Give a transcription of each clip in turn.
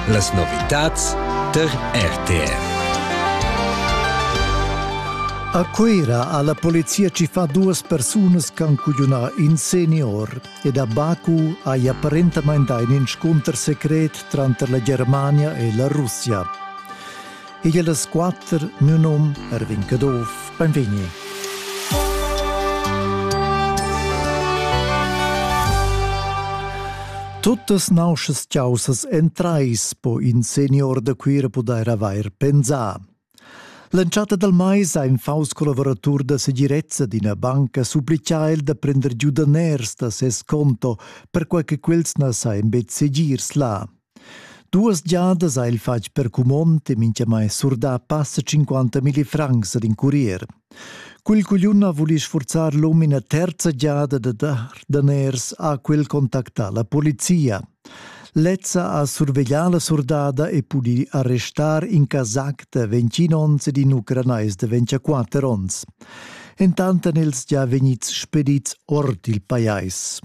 Las novitads tar RTR. A Cuira ha la polizia tschiffà duas persunas che han cugliunà in senior ed a Baku hai apparentamain dà in inscunter secret tranter la Germania e la Russia. Igl das quatter mio nom Erwin Caduff, benvegni. Tuttas nauschas ciausas en trais po in senior da Cuira pudair avair pensà. L'entschatta dal mais ha in faus collaboratur da segirezza d'ina banca supplicà el da prender giudaners da ses conto per quai che quels na sajan betg segirs là. Duas giadas ha el fatg per cumond e mintgamai surdà passa 50 milli francs ad in curier. Quel cugliun ha vulì sfurzar l'um ina terza giada da dar daners a quel contactà la polizia. Lezza ha surveglià la surdada e pudì arrestar in casac da 20 onns ed in ucranais da 24 onns. Entant èn els gia vegnids spedids ord il pajais.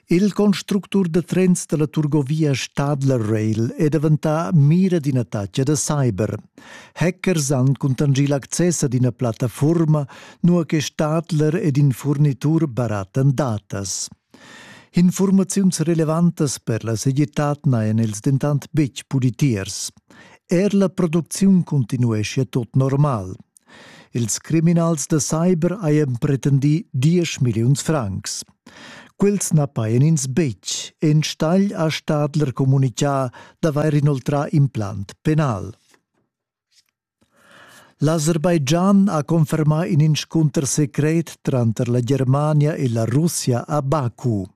Il constructur da trens da la turgovia Stadler Rail è daventà mira d'ina tacca da cyber. Hackers han cuntanschì l'access ad ina plattafurma, nua che Stadler ed in furnitur barattan datas. Informaziuns relevantas per la segirtad n'hajan els dentant betg pudi tiers. Er la producziun continueschia tot normal. Ils criminals da cyber hajan pretendì diesch milliuns francs. Quels na pajan ins betg. Enstagl ha Stadler communitgà d'avair inoltrà implant penal. L'Aserbaidschan ha confermà in inscunter secret tranter la Germania e la Russia a Baku.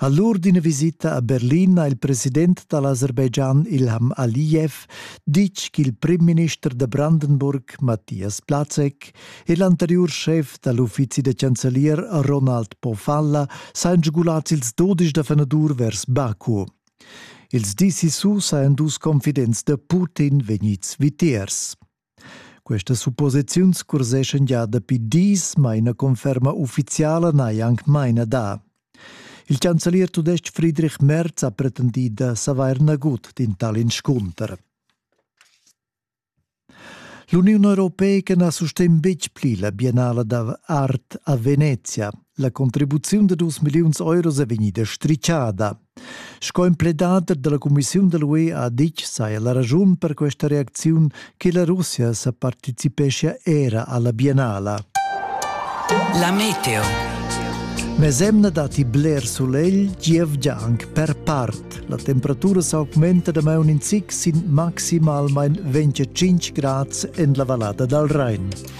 A l'ur d'ina visita a Berlin ha il president da l'Aserbaidschan Ilham Aliyev ditg ch'il primminister da Brandenburg, Matthias Plazek, e l'anteriur schef da l'uffizi da chancelier Ronald Pofalla sajan sgulads ils dudesch da fenadur vers Baku. Ils dis sissu sajan dus confidents da Putin vegnids vitiers. Questas supposiziuns curseschan gia dapi dis, ma ina conferma uffiziala n'hai anc maina dà. Il chancelier tudestg Friedrich Merz ha pretendì da savair nagut d'in tal inscunter. L'Uniun europeica na sustegn betg pli la biennala da art a Venezia. La contribuziun da dus milliuns euros è vegnida strichada. Sco empledader dalla cumissiun da l'UE ha ditg saja la raschun per questa reacziun che la Russia sa participeschia era alla biennala. La meteo. Mesemna datti bler sulegl, gievgia anche per part. La temperatura s'augmenta da maun in zic sin maximalmain 25 grad en la vallada dal Rhein.